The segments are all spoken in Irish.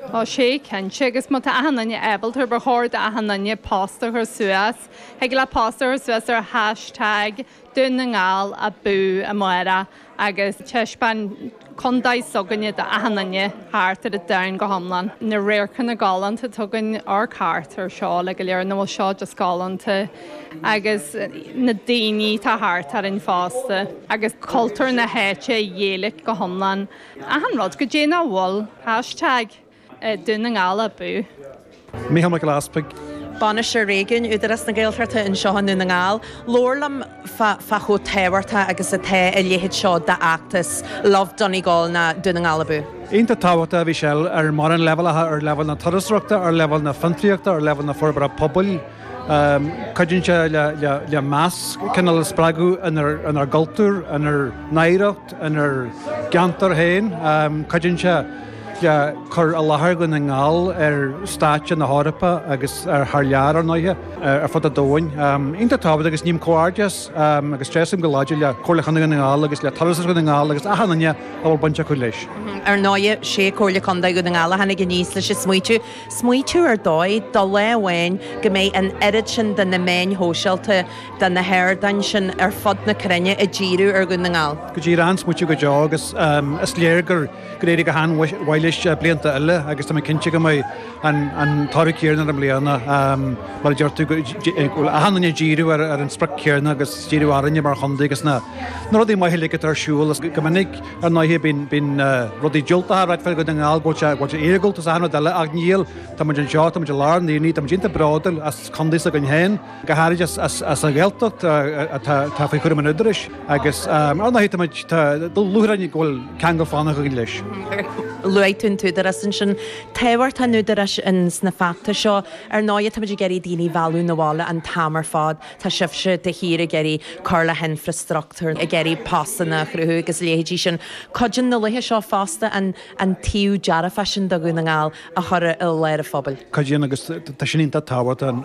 Tá sé cinnte, agus má tá achan duine ábalta, ba chóir d'achan duine post a chur suas. Thig leat post a chur suas ar hashtag Dún na nGall abú amárach agus taispeáin contae s'againne do achan duine thart ar an domhan go hiomlán. Na radharcanna galánta, tá againn ar thart orainn seo le go léir, nó bhuel seo just galánta, agus na daoine atá thart orainn fosta, agus cultúr na háite an Ghaeilge go hiomlán. Achan rud go dté, ná bhuel hashtag Dún na nGall abú. Mícheál Mac Giolla Easpaig. Bainisteoir Réigiúin, Údarás na Gaeltachta, anseo i nDún na nGall. Labhair liom fá chomh tábhachtach agus atá a leithéid seo d'fheachtas, Love Donegal nó Dún na nGall abú. Iontach tábhachtach a Mhichelle ar mórán leibhéalacha, ar leibhéal na turasóireachta, ar leibhéal na fiontraíochta, ar leibhéal na forbartha pobail, Cuidíonn sé le meas cineál a spreagadh inár gcultúr, inár n-oidhreacht, inár gceantar féin. Cuidíonn sé le cur i láthair Dhún na nGall ar stáitse na hEorpa agus thar lear, ar ndóighe, ar fud an domhain. Iontach tábhachtach agus ním comhghairdeas agus tréaslaím go láidir le Comhairle Chontae Dhún na nGall agus le Turas Dhún na nGall agus achan duine a bhfuil baint acu leis. Ar ndóighe, 'sé Comhairle Contae Dhún na nGall a tháinig aníos leis an smaoitiú. Smaoitiú ar dóigh, do lá amháin, go mbeidh an oiread sin de na meáin shóisialta, de na hardáin sin ar fud na cruinne, ag díriú ar Dhún na nGall. Go díreach an-smaoitiú go deo agus is léir gur éirigh go han-mhaith leis blianta eile agus tá mé cinnte go mbeidh an toradh céarna air i mbliana, mar a deir tú, go bhfuil achan duine ag díriú ar an sprioc céarna agus díriú orainne mar chontae agus na rudaí maithe uilig atá ar siúl go minic. Ar ndóighe, bíonn rudaí diúltacha á ráit faoi Dhún na nGall, go bhfuil sé iargúlta is achan rud eile, ach níl. Tá muid anseo, tá muid i lár an aonaigh, tá muid iontach bródúil as contae s'againn féin, go háirid as an Ghaeltacht atá faoi chúram an Údaráis, agus ar ndóighe tá muid, tá lúcháir orainn go bhfuil ceangal fánach againn leis. Luaigh tú an tÚdarás ansin. Tábhacht an Údaráis ins na feachtais seo. Ar ndóighe tá muid ag iarraidh daoine a mhealladh 'na bhaile an t-am ar fad. Tá sibhse de shíor ag iarraidh cur le hinfreastruchtúr, ag iarraidh postanna a chruthú agus a leithéidí sin. Cuidíonn na laethe seo fosta an taobh dearfach sin do Dhún na nGall a chur i láthair an phobail. Cuidíonn, agus tá sin iontach tábhachtach,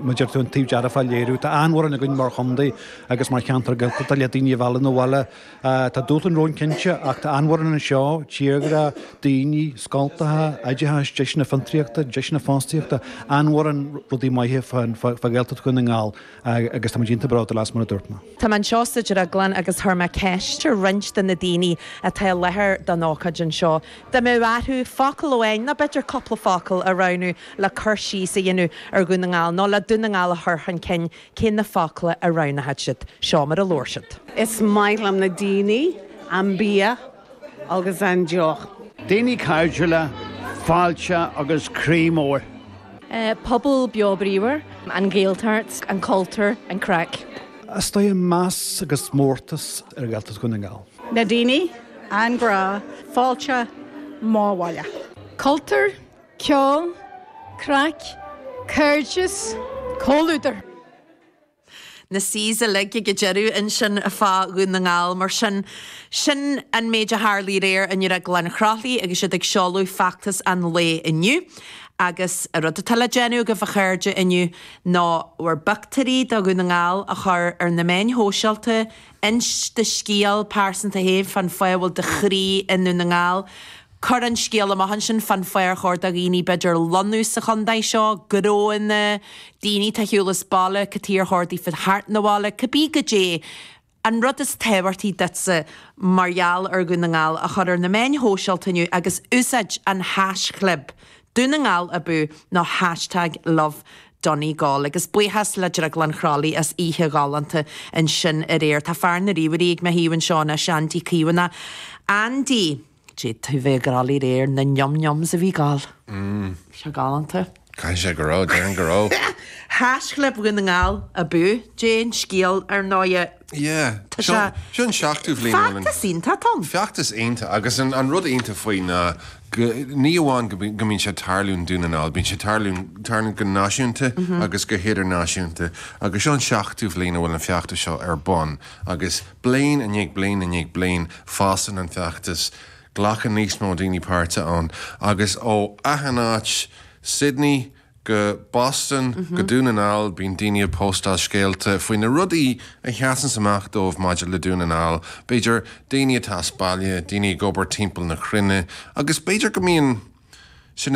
mar a deir tú an taobh dearfach a léiriú, tá an-mhórán againn mar chontae agus mar cheantar go le daoine a mhealladh 'na bhaile. Tá dúshláin romhainn cinnte, ach tá an-mhórán anseo, tírghrá, daoine, scoltacha, oideachas, deiseanna fiontraíochta, deiseanna fostaíochta, an-mhórán rudaí maithe fá Ghaeltacht Dhún na nGall agus táimid iontach bródúil as, mar a dúirt mé. Tá mé anseo sa drioglann agus chuir mé ceist ar roinnt de na daoine atá i láthair don ócáid anseo, dá mbeadh orthu focal amháin, nó b'fhéidir cúpla focal, a roghnú le cur síos a dhéanamh ar Dhún na nGall, nó le Dún na nGall a chur chun cinn Cé na focla a roghnaigh siad? Seo mar a labhair siad. Is maith liom na daoine, an bia agus an deoch. Daoine cairdiúla, fáilte agus croí mór. Pobal beo bríomhar. An Ghaeltacht, an cultúr, an craic. Is tá meas agus mórtas ar Ghaeltacht Dhún na nGall. Na daoine, an grá, fáilte, mo bhaile. Cultúr, Ceol, craic, cairdeas, comhluadar. Na C's uilig ag an deireadh ansin fá Dhún na nGall, mar sin. Sin an méid a tharla aréir i nDrioglann Chroithlí agus iad ag seoladh feachtas an lae inniu. Agus an rud atá le déanamh agaibh, a chairde, inniu ná bhur bpictiúirí de Dhún na nGall a chur ar na meáin shóisialta, inis do scéal pearsanta féin fán fáth a bhfuil do chroí i nDún na nGall, Cuir an scéal amach ansin fán fáth ar chóir do dhaoine b'fhéidir lonnú sa chontae seo, gnóanna, daoine atá ar shiúl as baile, cad chuige ar chóir daofa teacht 'na bhaile, cibé goidé an rud is tábhachtaí duitsa mar gheall ar Dhún na nGall a chur ar na meáin shóisialta inniu agus úsáid an haischlib Dún na nGall abú nó hashtag lovedonegal. Agus buíochas le Drioglann Chroithlí as oíche ghalánta ansin aréir. Tá fear na ríomhairí ag mo thaobh anseo anois, Andy Caomhánach. Andy. D'fhéadfaí a bheith ag rá de réir na niam niams a bhí ag gabháil. Bhí sé galánta. Caithfidh sé go raibh, déarfainn go raibh. Haischlib Dún na nGall abú, sin an scéal, ar ndóigh. Yeah. Tá sé. Seo an seachtú bliain ó rinneadh. Feachtas iontach, Tom. Feachtas iontach agus an rud iontach faoi ná go, ní amháin go mbíonn sé ag tarlú i nDún na nGall, bíonn sé ag tarlú, tarlaíonn go náisiúnta agus go hidirnáisiúnta agus seo an seachtú bliain a bhfuil an feachtas seo ar bun agus, Bliain i ndiaidh bliain i ndiaidh bliain, fásann an feachtas, glacann níos mó daoine páirt ann, agus ó achan áit, Sydney go Boston go Dún na nGall, bíonn daoine ag póstáil scéalta faoi na rudaí a sheasanns amach dóibh maidir le Dún na nGall, b'fhéidir daoine atá as baile, daoine ag obair timpeall na cruinne, agus b'fhéidir go mbíonn.